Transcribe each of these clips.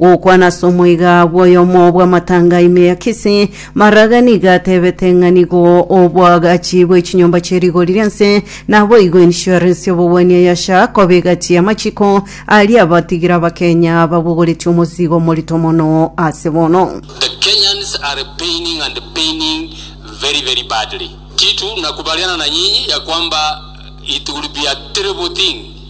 Gokwana ase omoiga bw'oyomo bw'amatanga ime ya Kisii, Maraga nigo atebete ng'a nigo obwagachi bwe chinyomba chie rigori ri'ense naboigo insurance y'obogwenia ya SHA koba egati y'amachiko aria abatigira Abakenya babogoretie omosigo omorito mono ase bono. The Kenyans are paining and paining very very badly. Kitu nakubaliana na nyinyi ya kwamba it will be a terrible thing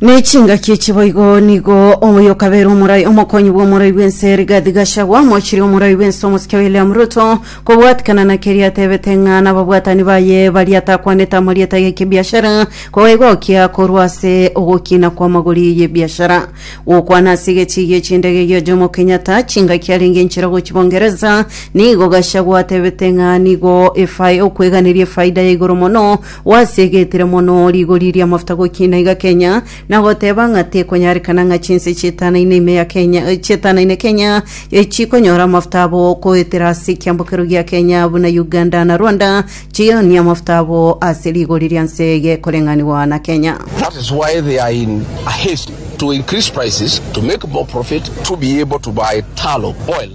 Nechingaki echi boigo nigo oyo kabere omorai omokonyi bw'omorai bw'ense Rigathi Gachagua mochirie omorai bw'ense omosike William Ruto kobwatikana na keria atebete ng'a nababwatani baye baria atakwanete amarieta y'ekebiashara koegokia korwa ase ogokina kw'amagori y'ebiashara. Gokwana ase egechiigi echindege gia Jomo Kenyatta chingaki arenge nchera gochia Bongereza nigo Gachagua atebete ng'a nigo efae okweganeria efaida ya igoro mono Gwasigetire mono rigori ri'amafuta gokina iga Kenya, na goteba ng'a tekonyarekana ng'a chinse chietanaine ime ya Kenya, chietanaine Kenya chikonyora amafuta abo goetera ase ekiambokero gia Kenya buna Uganda na Rwanda chionie amafuta abo ase rigori ria nse gekoreng'anigwa na Kenya. That is why they are in a haste to increase prices to make more profit to be able to buy tallow oil.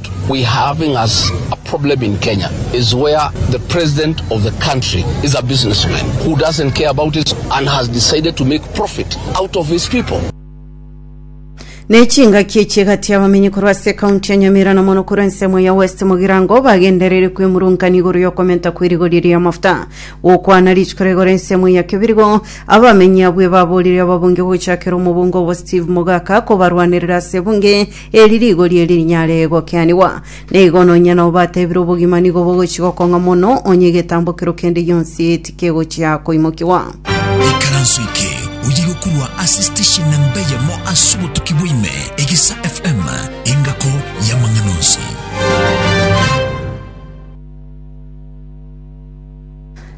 We having as a problem in Kenya is where the president of the country is a businessman who doesn't care about his and has decided to make profit out of his people. Ne chingaki echi egati abamenyi korwa ase ekaunti ya Nyamira na mono korwa ensemo ya West Mogirango bagenderere kwemurungania igoro y'okomenta kw'erigori ri'amafuta gokwana rituko rigoro ensemo ya Kibirigo. Abamenyi abwo ebaborire ababunge gochakera omobunge obo Steve Mogaka kobarwanerera ase ebunge Eri rigori eri rinyare gokeanigwa. Na igo nonya nao batebire obogima nigo bogochia gokong'a mono, onye egetambokero kende gionsi tikegochia koimokigwa. Ikaranso eke oye gokorwa ase station namba eyemo ase obotuki bwaime, Egisa FM, engako y'amang'ana onsi.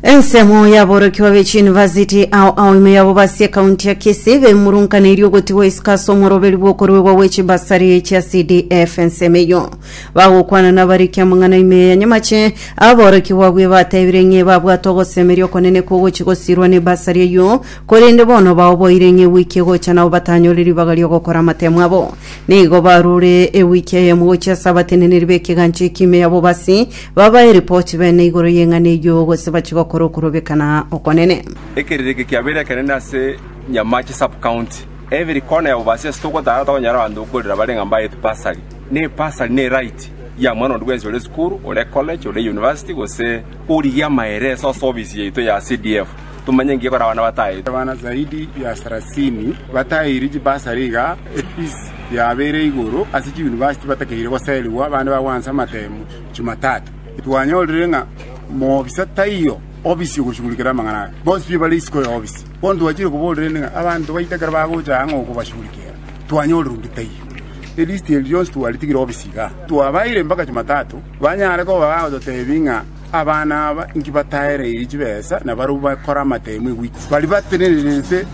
Ensemo y'aborokigwa be chiyunivasiti ao ao ime yabo basi ekaunti ya Kisii bemurunkaneirie ogotigwa isiko ase omoroberi bw'okoruegwa gwe chibasari chia CDF. Ensemo eyio bagokwana nabariki amang'ana ime ya nyamache aborokigwa abwo ebatebire ng'e babwate ogosemeria okonene kw'ogochi gosirwa nebasari eyio korende bono baoboire ng'e ewiki egocha nabo batanyore ribaga ri'ogokora amatemo abo. Nigo barure ewiki eyemo gochia ase abateneneri b'ekegancha ekio ime yabo basi Babae ripoti bene igoro y'eng'ana eyio, gose bachie gokora okorobekana okonene. Ekeriri eke kiabeire ekenene ase Nyamache Sub-county. Every corner ya Bubaasi ase togotara tokonyora abanto gokorera bare ng'a mbaete bursary. Na ebursary ne right ya mwana onde bwensi ore esukuru, ore ecollege, ore euniversity gose origia amaereso ase ofisi yaito ya CDF tomanye ng'ai ekore abana bataete. Abana zaidi ya sarasini bataeirwe chibursary iga efees yabeire igoro ase chiuniversity batakeire goserigwa abande bagwansa amatemo. Chimatato, twanyorire ng'a mobisa taiyo obisi ogochugurikera amang'ana aya. Bonsi pi bare isiko y'obisi. Bono twachire koborerania ng'a abanto baito ekero bagocha aa ng'a okobachugurikera, twanyorire onde taiyo. Elist eria rionsi twaritigire obisi igaa. Twabaeire mpaka Chimatato, banyare koba bagototebia ng'a abana aba inki bataereiri chibesa na barabwo bakore amatemo eguiko. Baria batenererete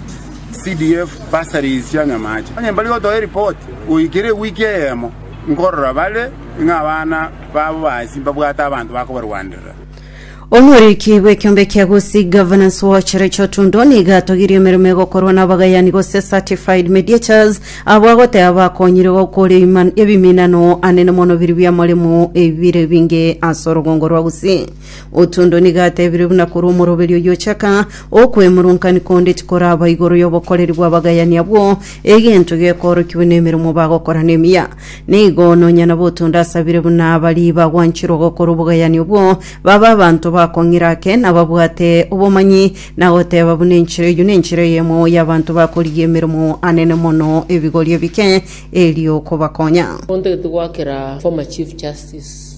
CDF bursaries chia nyamache, onye mbari gotoa eripoti goikera eweek eyemo. Nkorora bare, ng'a abana babo b'aase mbabwate abanto bakobarwanderera. Omoriki bw'ekiombe kia Gusii Governance Watch Rachel Tundo nigo atogirie emeremo egokorwa nabagayani gose certified mediators abwo agoteba bakonyire gokora ebiminano anene mono biria biamoremo ebire binge ase orogongo rwa Gusii. Otondo nigo atebirie buna korwa omoroberi oyio ochaka, Okwemurunkanigwa konde tikoraba igoro y'obokoreri bw'abagayani abwo, egento gekoorokigwe nemeremo bagokora nemiya. Nigo nonya nabo Otondo asabire buna baria bagwanchirwe gokora obogayani obwo babe abanto bakong'ira ake, na babwate obomanyi, na goteba buna enchera eyio nenchera eyemo y'abanto bakorigia emeremo anene mono ebigori ebike, erio kobakonya. Onde tigwakera former chief justice.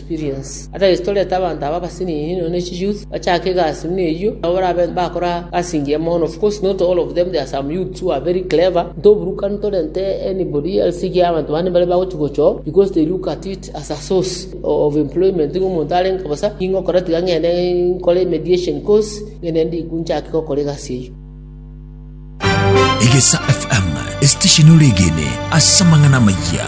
experience. Otherwise torete abanto aba abasinini nonya ne chi youth bachake egasi buna eyio nabo barabe bakora gasi engiya mono of course not all of them there are some youths who are very clever ntoburukani torente anybody else iga abanto bande mbare bagochi gochoo because they look at it as a source of employment iga omonto arenge bosa ninge okora tiga ng'ende nkore mediation course ng'ende ndiku nchake gokora egasi eyio. Egesa FM, esitesheni ore egene ase amang'ana amayia.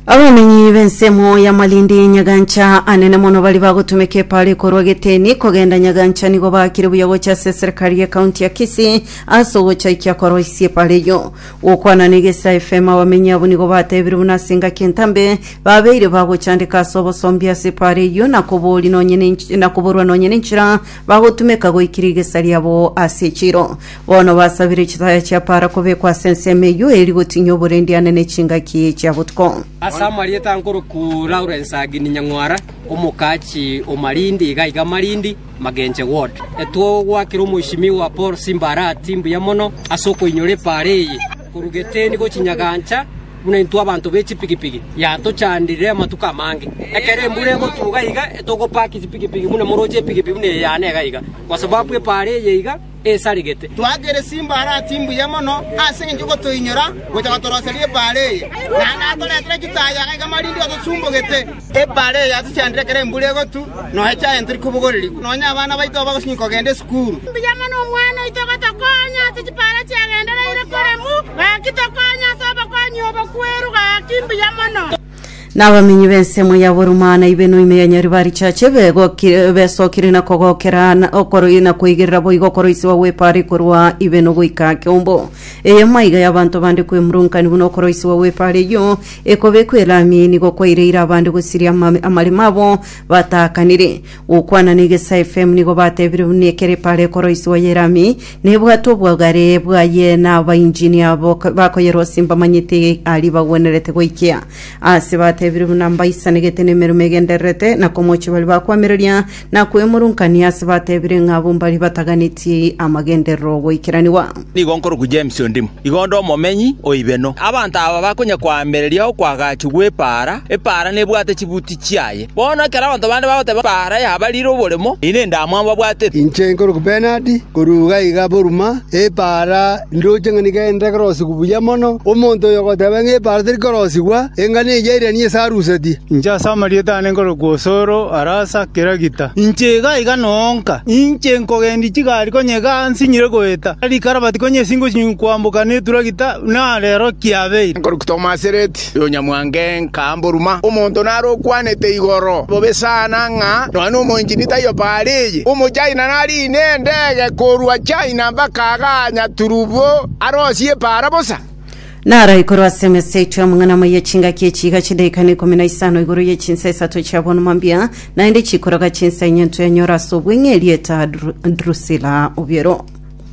Abamenyi b'ensemo ya Malindi Nyagancha anene mono bari bagotumeka epara ekorwa Geteni kogenda Nyagancha nigo baakire buya gocha ase eserekari ye county ya Kisii ase ogochaikia koroisia epara eyio. Gokwana na Egesae FM abamenyi abwo nigo batebire buna ase engaki entambe babeire bagochandeka ase obosombi ase epara eyio na koboria nonye na koborwa nonye nenchera bagotumeka goika rigesa riabo ase echiro. Bono basabire chitaya chia para kobekwa ase ensemo eyio eri gotinyia oborendiane ne chingaki chia botuko. Ase amarieta nkoroku Lawrence Agini Nyang'wara, omokachi o Malindi iga iga Malindi, Magenche Ward. Etwogoakera Omweshimiwa Paul Simba Arati mbuya mono ase okoinyora epaara eye. Korwa Geteni gochia Nyagancha, buna intwe abanto be chipigipigi, yatochandire amatuko amange. Ekero embura egotuga iga, togopaki chipigipigi buna moroche epigipigi buna eye yane iga iga, kwa sababu epaara eye iga esaregete. Twakire chimbaare aa chimbuya mono ase engencho y'ogotoinyora gocha gotoroseria epaara eye, na natoretere chitaai iga iga marinde otosumbogete. Ebaale eye yatochandire ekero embura egotu, nonya echaye ntori kobogorerigwa, nonya abana baito abagosinywa kogenda esukuru. Mbuya mono omwana oito gotokonya ase chipaara chiagendereire koremu, gaki tokonya ase obokonyia obo kwerwa, gaki mbuya mono. Na abamenyi b'ensemo ya Buruma na Ibeno ime ya Nyaribarichache begoki- besokire na kogokera na okoro- na koigerera boigo okoroisiwa gw'epaari korwa Ibeno goika Kiombo. Eye maiga y'abanto bande kwemurunkanigwa na okoroisiwa gw'epaari eyio, Ekobekwa elami nigo kwaireire abande gosiria ama- amaremo abo bataakanire. Gokwana na Egesa FM nigo batebire buna ekero epaara ekoroiswa ye elami nebwate obwogare bwaye na abainjini abo ko- bakoyerosia mbamanyete aria bagwenerete goikia. Aase batebire buna mbaisanegete nemeremo egendererete na komochie baria bakwamereria na kwemurungania ase batebire ng'a abwo mbaria bataganetie amagenderero 'ogoikeranigwa. Nigo nkorokwa James Ondimu, igo nde omomenyi o Ibeno. Abanto aba bakonya koamereria okoagachwa gw'epaara, epaara nebwate chibuti chiaye. Bono ekero abanto bande bagoteba epaara yabarire oboremo, eyi nendamwamu babwatete. Inche nkorokwa Bernard, korwa iga iga Burma, epaara. Ndoche ng'a nigo ende ekerosigwa buya mono, omonto oyo ogoteba ng'a epaara teri korosigwa, enga neyio airanie ase arusetie. Inche ase amarieta aane nkorokwa Osoro, arasa, Kiragita. Inche iga iga noonka, inche nkogendia chigari konya iga nsinyire goeta, rikarabati konya esingo chinyingu koamboka neturagita, na rero kiabeire. Nkorokwa Tomasireti. Yonyamwange nkamboruma, omonto naro okwanete igoro bobe sana ng'a nonya nomoinjini taiyo paara eye. Omochina nariine endege korwa China mpaka aganya turubo arosie epaara bosa. Naraikorwa ase emesa yaito y'amang'ana amaya chingaki echiiga chi'edaika na ikomi na isano igoro ye chinsa isato chi'abonoma mbia, naende chikoroga chinsa enye ntwe enyora ase obweng'e erieta Dru- Drusila obiero.